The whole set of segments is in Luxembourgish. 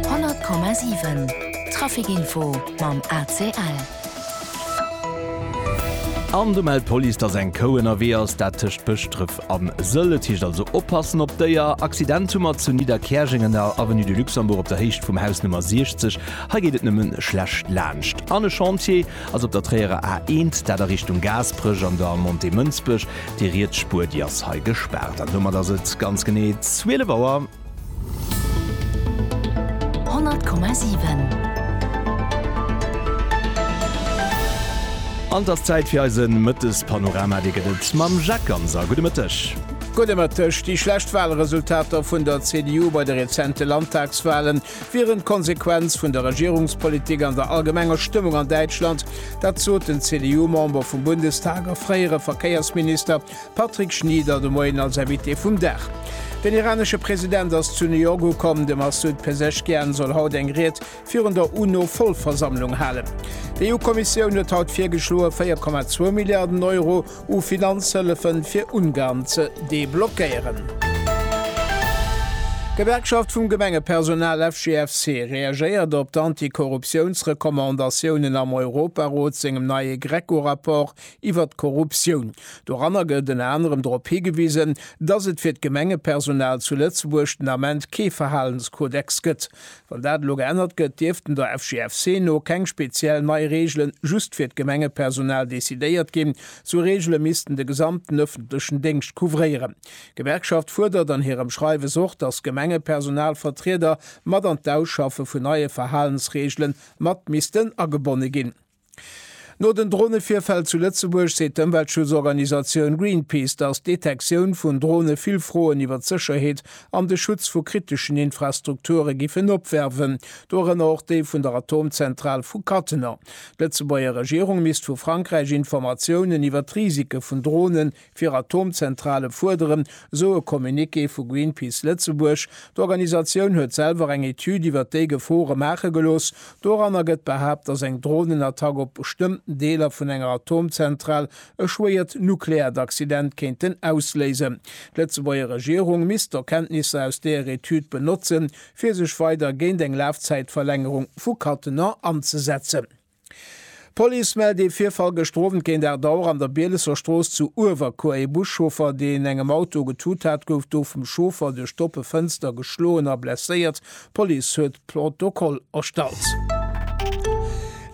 100,7 Trafic Info mam ACL. An do mellt d'Police, dass eng Kou ënnerwee ass, dat tëscht Bëschdref a Sëll. Et heescht also oppassen op d'Déier. Accident hu mer zu Nidderkäerjeng an der Avenue du Luxembourg op der Héicht vum Haus Nummer 60. Hei geet et nëmme schlecht laanscht. An e Chantier ass op der Tréierer A 1, dat a Richtung Gaasperech an der Montée Mënsbech. Déi riets Spuer, déi ass hei gespaart. An domat ass et ganz genee 12 Auer. 100,7. An 't ass Zäit fir eise Mëttespanorama. Dee gëtt et mam Jacques Ganser. Gudde Mëtteg. Gudde Mëtteg. Déi schlecht Walresultater vun der CDU bei de rezente Landtagswalen wieren d'Konsequenz vun der Regierungspolitik an der allgemenger Stëmmung an Däitschland. Dat sot den CDU-Member vum Bundestag a fréiere Verkéiersminister Patrick Schnieder de Moien als Invité vum Dag. Den iranesche President ass zu New York ukomm. De Massoud Pezeshkian soll haut eng Ried virun der UNO-Vollversammlung halen. D'EU-Kommissioun huet haut virgeschloe 4,2 Milliarden Euro u Finanzhëllefe fir Ungarn ze deblockéieren. D'Gewerkschaft vum Gemengepersonal FGFC reagéiert op d'Anti-Korruptiouns-Recommandatiounen am Europarot sengem neie GRECO-Rapport Iwwert d'Korruptioun. Doranner gëtt ënner anerem drop higewisen, dass et fir d'Gemengepersonal zu Lëtzebuerg den Ament kee Verhalenskodex gëtt. Wann dat elo geännert gëtt, dierften der FGFC no keng speziell nei Reegele just fir d'Gemengepersonal decidéiert ginn. Sou Reegele missten de gesamten ëffentlechen Déngscht couvréieren. D'Gewerkschaft fuerdert an hirem Schreiwes och, dass d'Gemengepersonalvertrieder mat an d'Ausschaffe vun neie Verhalensreegele mat missten agebonne ginn. No den Dronevirfäll zu Lëtzebuerg seet d'Ëmweltschutzorganisatioun Greenpeace, datt d'Detektioun vun Drone vill Froen iwwer d'Sécherheet an de Schutz vu kriteschen Infrastrukture giffen opwerfen, dorënner och déi vun der Atomzentral vu Cattenom. D'Lëtzebuerger Regierung misst vu Frankräich Informatiounen iwwer d'Risike vun Drone fir Atomzentrale fuerderen, esou e Communiqué vu Greenpeace Lëtzebuerg. D'Organisatioun huet selwer eng Etüd iwwer déi Gefore maache gelooss. Doranner gëtt behaapt, datt eng Dronenattack op bestëmmten Deeler vun enger Atomzentral e schwéiert nukleäert Accident kéinten ausléisen. D'Lëtzebuerger Regierung misst d'Erkenntnisser aus deer Etüd benotzen, fir sech weider géint eng Lafzäitverlängerung vu Cattenom anzesetzen. D'Police mellt ee Virfall gëschter Owend géint 8 Auer an der Bielesser Strooss zu Uewerkuer. Ee Buschauffer, deen engem Auto getut hat, gouf do vum Chauffer duerch d'oppe Fënster geschloen a blesséiert. D'Police huet Protokoll erstallt.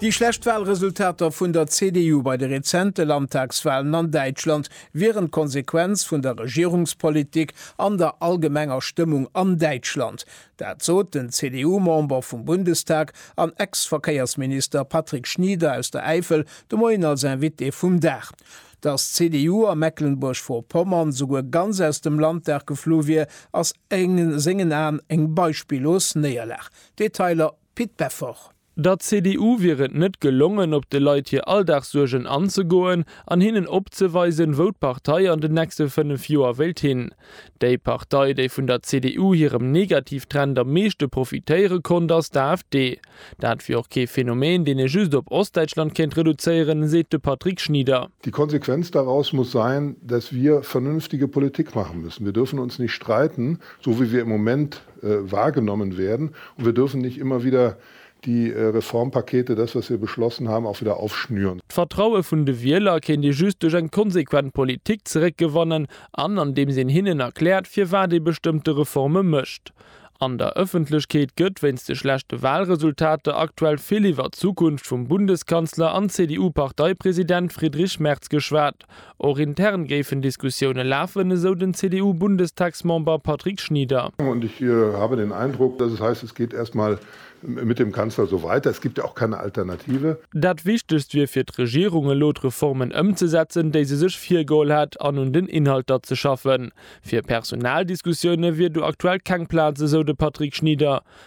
Déi schlecht Walresultater vun der CDU bei de rezente Landtagswalen an Däitschland wieren d'Konsequenz vun der Regierungspolitik an der allgemenger Stëmmung an Däitschland. Dat sot den CDU-Member vum Bundestag an Ex-Verkéiersminister Patrick Schnieder aus der Äifel de Moien als Invité vum Dag. Datt d'CDU a Mecklenburg-Vorpommern souguer ganz aus dem Landtag geflu wier, ass a sengen Aen eng beispillos Néierlag. Detailer, Pit Beffort. Der CDU wier et net gelongen, op de Leit hir Alldagssuergen anzegoen an hinnen opzeweisen, wou d'Partei an den nächste 5 Joer wéilt hin. Déi Partei, déi vun der CDU hirem Negativtrend am meeschte profitéiere konnt, ass d'AfD. Dat wier och kee Phänomen, deen ee just op Ostdeitschland kéint reduzéieren, seet de Patrick Schnieder. Die Konsequenz daraus muss sein, dass wir vernünftige Politik machen müssen. Wir dürfen uns nicht streiten, so wie wir im Moment wahrgenommen werden und wir dürfen nicht immer wieder die Reformpakete, das was wir beschlossen haben, auch wieder aufschnüren. D'Vertraue vun de Wieler kéint ee just duerch eng konsequent Politik zeréckgewannen an andeems een hinnen erkläert firwat ee bestëmmte Reforme mécht. An der Ëffentlechkeet gëtt wéinst de schlechte Wahlresultater aktuell vill iwwer d'Zukunft vum Bundeskanzler an CDU-Parteipresident Friedrich Merz geschwat, Och intern géifen Diskussioune lafen, esou den CDU-Bundestagsmember Patrick Schnieder. Und ich habe den Eindruck, dass es heißt, es geht erst mal mit dem Kanzler so weiter, es gibt ja auch keine Alternative. Dat Wichtegst wier fir d'Regierung elo d'Reformen ëmzesetzen, déi se sech virgeholl hätt an un den Inhalter ze schaffen. Fir Personaldiskussioune wier do aktuell keng Plaz, esou de Patrick Schnieder.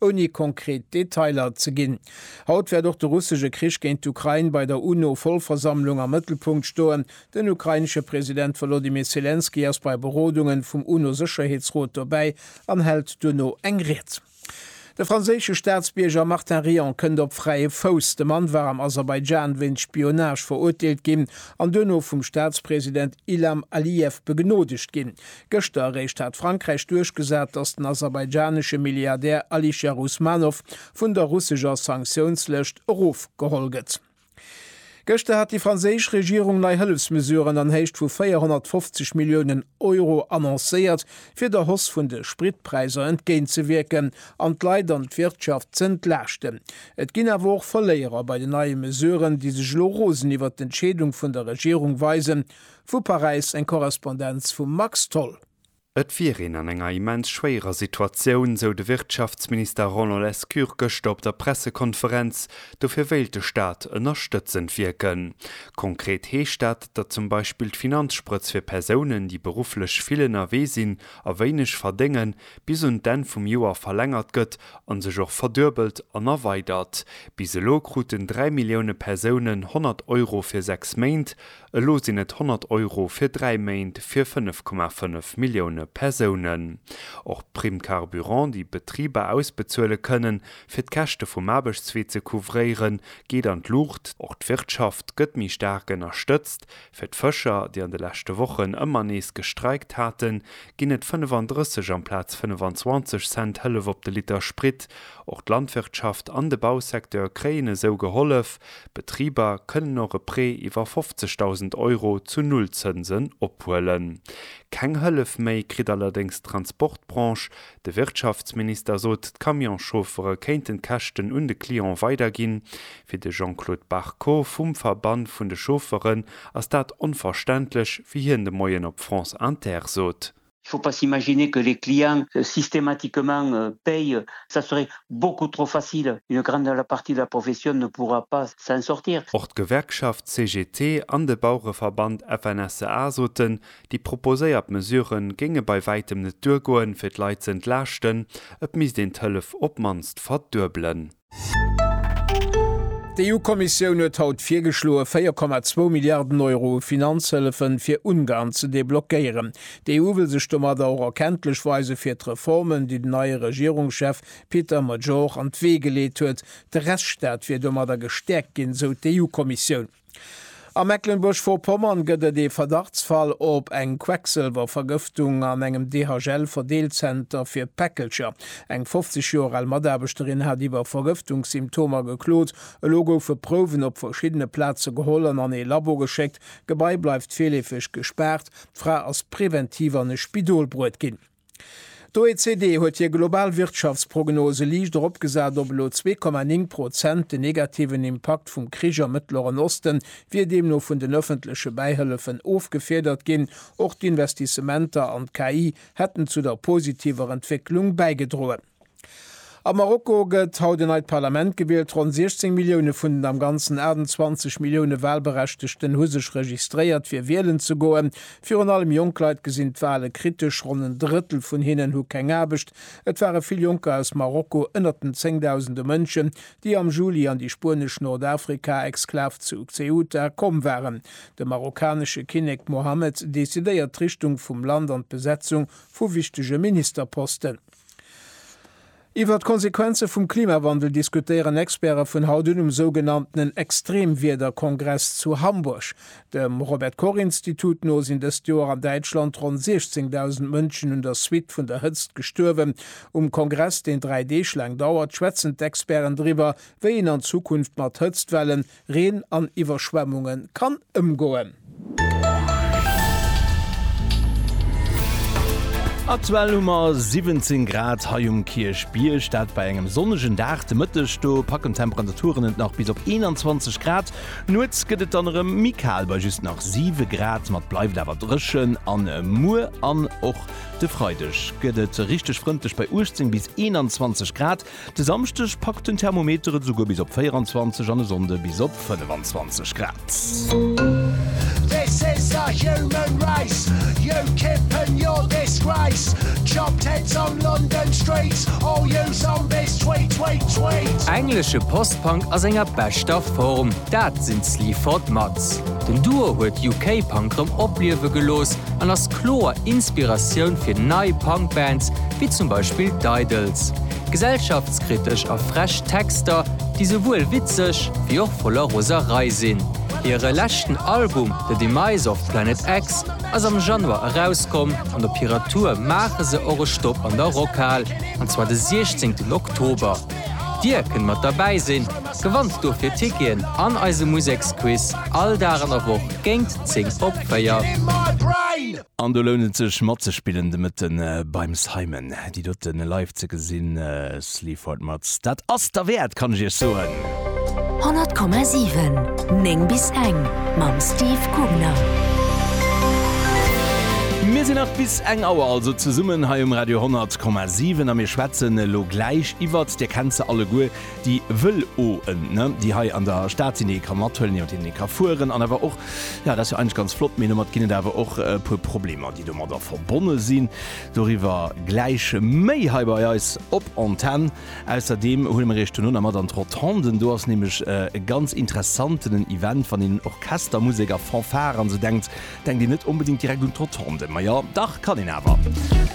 Ouni konkret Detailer ze ginn, Haut wäert och de russesche Krich géint d'Ukrain bei der UNO-Vollversammlung am Mëttelpunkt stoen. Den ukrainesche President Wolodymyr Selenskyj ass bei Berodungen vum UNO-Sécherheetsrot dobäi an hält duerno eng Ried. De franséische Staatsbierger Martin Rion kënnt op fräie Fouss. De Mann war am Aserbaidschan wéinst Spionage verurteelt ginn an duerno vum Staatspresident Ilham Aliyev begnoodegt ginn. Gëschter eréischt hat Frankräich duerchgesat, datt den aserbaidschanesche Milliardär Alisher Usmanov vun der russescher Sanktiounslëscht erofgeholl gëtt. Gëschter hat déi franséisch Regierung nei Hëllefsmesuren an Héicht vu 450 Milliounen Euro annoncéiert, fir der Hausse vun de Spritpräisser entgéintzewierken an d'Leit an d'Wirtschaft ze entlaaschten. Et ginn awer och Verléierer bei den neie Mesuren, déi sech elo rosen iwwert d'Entscheedung vun der Regierung weisen, Vu Paräis eng Korrespondenz vum Max Tholl. Et wier een an enger immens schwéierer Situatioun, sou de Wirtschaftsminister Roland Lescure gëschter op der Pressekonferenz. Dofir wéilt de Staat ënnerstëtzend wierken. Konkret heescht dat, datt zum Beispill d'Finanzsprëtz fir Persounen, déi berufflech vill ënnerwee sinn a wéineg verdéngen, bis un d'Enn vum Joer verlängert gëtt a sech och verduebelt an erweidert. Bis elo kruten 3 Millioune Persounen 100 Euro fir sechs Méint. Elo sinn et 100 Euro fir dräi Méint fir 5,5 Millioune Persounen. Och d'Prime carburant, déi Betriber ausbezuele kënnen, fir d'Käschte vum Aarbechtswee ze couvréieren, geet an d'Luucht. Och d'Wirtschaft gëtt méi staark ënnerstëtzt. Fir d'Fëscher, déi an de leschte Wochen ëmmer nees gestreikt haten, ginn et 35 amplaz 25 Cent Hëllef op de Liter Sprit. Och d'Landwirtschaft an de Bausecteur kréien esou gehollef. Betriber kënnen och e Prêt iwwer 50.000 Euro zu Nullzënsen ophuelen. Keng Hëllef méi kritt allerdéngs d'Transportbranche. De Wirtschaftsminister sot, d'Camionschauffere kéinten d'Käschten un de Client weiderginn. Fir de Jean-Claude Barrot vum Verband vun de Chaufferen ass dat onverständlech, wéi hien de Moien op France Inter sot. Il faut pas s'imaginer que les clients systématiquement payent, ça serait beaucoup trop facile, une grande la partie de la profession ne pourra pas s'en sortir. Och d'Gewerkschaft CGT an de Bauereverband FNSEA soten, déi proposéiert Mesure géinge bei wäitem net duergoen, fir d'Leit ze entlaaschten, et misst een d'Hëllef op d'mannst verduebelen. D'EU-Kommissioun huet haut virgeschloe 4,2 Milliarden Euro u Finanzhëllefe fir Ungarn ze deblockéieren. D'EU wëll sech domadder och erkenntlech weise fir d'Reformen, déi den neie Regierungschef Peter Major an d'Wee geleet huet. De Rechtsstaat wier domadder gestäerkt ginn, sou d'EU-Kommissioun. A Mecklenburg-Vorpommern gëtt et ee Verdachtsfall op eng Quecksëlwervergëftung an engem DHL-Verdeelzenter fir Päckelcher. Eng 50 Joer al Mataarbechterin hat iwwer Vergëftungssymptomer geklot. Elo goufe Prouwen op verschiddene Plaze geholl an an ee Labo geschéckt. D'Gebai bleift virleefeg gespaart. D'Fra ass preventiv an e Spidol bruet ginn. D'OECD huet hir global Wirtschaftsprognose liicht eropgesat op elo 2,9 Prozent. Den negativen Impakt vum Krich am Mëttleren Osten wier deemno vun den ëffentleche Bäihëllefen ofgefiedert ginn. Och d'Investissementer an d'KI hätten zu der positiver Entwécklung bäigedroen. Am Marokko gëtt haut en neit Parlament gewielt. Ronn 16 Millioune vun den am Ganzen 28 Millioune Walberechtegten hu sech registréiert, fir wielen ze goen. Virun allem jonk Leit gesinn d'Wale kritesch. Ronn en Drëttel vun hinnen hu keng Aarbecht. Et ware vill Jonker aus Marokko ënnert den Zéngdausende Mënschen, déi am Juli an déi spuenesch Nordafrika-Exklav zu Ceuta komm waren. De marokkanesche Kinnek Mohammed decidéiert d'Richtung vum Land an d'Besetzung vu wichtege Ministerposten. Iwwert d'Konsequenze vum Klimawandel diskutéieren Experte vun haut un um sougenanntenen Extremwiederkongress zu Hamburg. Dem Robert Koch Institut no sinn dëst Joer an Däitschland ronn 16.000 Mënschen un der Suite vun der Hëtzt gestuerwen. Um Kongress, deen dräi Deeg laang dauert, schwätzen d'Experten driwwer, wéi een an Zukunft mat Hëtztwellen, Reen an Iwwerschwemmunge kann ëmgoen. Aktuell hu mer 17 Grad hei um Kierchbierg, dat bei engem sonnegen Dag. De Mëtteg do packen d'Temperaturen et nach bis op 21 Grad. Nuets gëtt et dann erëm méi kal bei just nach 7 Grad, ma et bleift awer dréchen. A muer an och de Freideg gëtt et richteg frëndlech bei 18 bis 21 Grad. De Samschdeg packt den Thermometer et esouguer bis op 24 an e Sonnde bis op 25 Grad. Englesche Post-Punk a senger beschter Form, dat sinn d'Sleaford Mods. Den Duo huet UK-Punk rëm opliewe gelooss an ass. kloer Inspiratioun fir nei Punk-Bands, wéi zum Beispill d'Idles. Gesellschaftskritesch a frech Texter, déi souwuel witzeg, wéi och voller Roserei sinn. Hire leschten Album The Demise of Planet X ass am Januar erauskomm an op hirer Tour maache se och e Stopp an der Rockhal, an zwar de 16 Oktober. Dir kënnt mat derbäi sinn! Gewannt dofir Ticketen an eise Museksquiz all Dag an der Woch géint 10 op 4. An do lount et sech matzespillen de Mëtte beim Simon. Déi dote live ze gesinn, Sleaford Mods, dat ass derwäert, kann ech iech soen. 100,7 9 bis eng mam Steve Gubner. Mir sinn nach bis eng Auer also zesummen hei um Radio 100,7 a mir schwätzen elo gläich iwwert, dir kennt se alleguer, déi Vël-oen, ne, déi hei an der Stad sinn, déi ee ka mathuelen, iwwer deenen ee ka fueren an awer och, jo, dat ass jo eigentlech ganz flott, mee domat ginn et awer och e puer Problemer, déi domadder verbonne sinn. Doriwwer gläich méi hei bei eis op Antenn. Ausserdeem huele mer iech duerno nach mat an d'Rotonden. Do ass nämlech e ganz interessanten en Event. Wann een un Orchestermusek a Fanfare an esou denkt, denkt een net onbedéngt direkt un d'Rotonden. Ma jo, dach kann een awer.